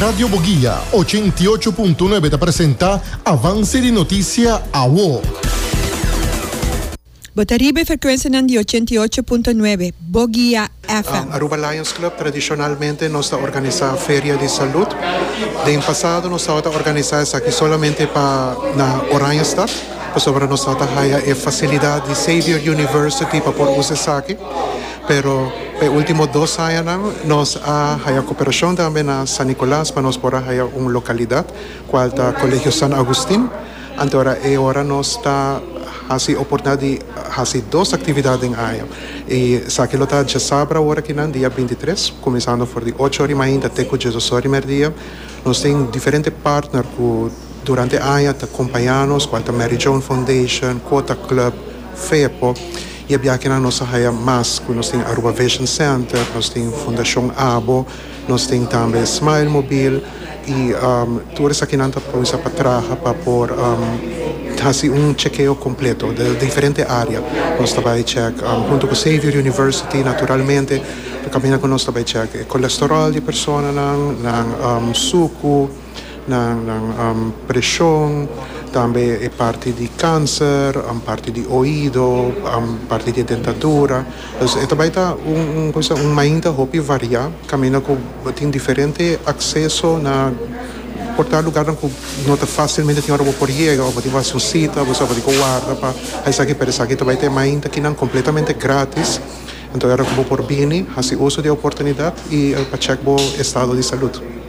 Radio Boguia, ochenta i ocho punto nuebe ta presenta avanse di notisia awo. Bo ta riba e frekuensianan di ochenta i ocho punto nuebe, Boguia FM. Aruba Lions Club tradishonalmente nos ta organisá feria di salut. Den pasado nos tabata organisá esaki solamente pa na Oranjestad, pasobra nos tabata haya e fasilidat di Xavier University pa por usa esaki. Pero e ultimo dos añanan nos a haya cooperacion tambe na San Nicolas pa nos por a haya un localidad cual ta Colegio San Agustin. Anteora e ora nos ta haci oportunidad di haci dos actividad den aña y esaki lo ta diasabra ora aki nan dia binti tres cuminsando for di ocho ora y mainta te cu diesdos ora y merdia. Nos tin diferente partner cu durante aña ta compaya nos cual ta Mary Joan Foundation, Quota Club, Fepo. I a biaha kinan nos a haya mas ku nos tin Aruba Vision Center, nos tin Fundashon Abo, nos tin tambe Smile Mobil i tur esakinan ta kuminsá pa traha pa por hasi un chekeo kompleto den diferente área. Nos ta bai chèk huntu ku Xavier University naturalmente, ta kaminda ku nos ta bai chèk e kolesteròl di personanan, nan suku, nan nan preshon tambe e parti di kanser parti di oido parti di dentadura dus e ta bai ta un un kobisa un mainta hopi variá kaminda ku bo tin diferente akseso na por ta lugarnan ku no ta fásilmente tin ora bo por yega bo tin ku hasi un sita bo sabadí ku warda pa a esaki pero esaki ta bai ta e mainta kinan kompletamente grátis enton era ku bo por bini hasi uso di e oportunidat i pa chèk bo estado di salud.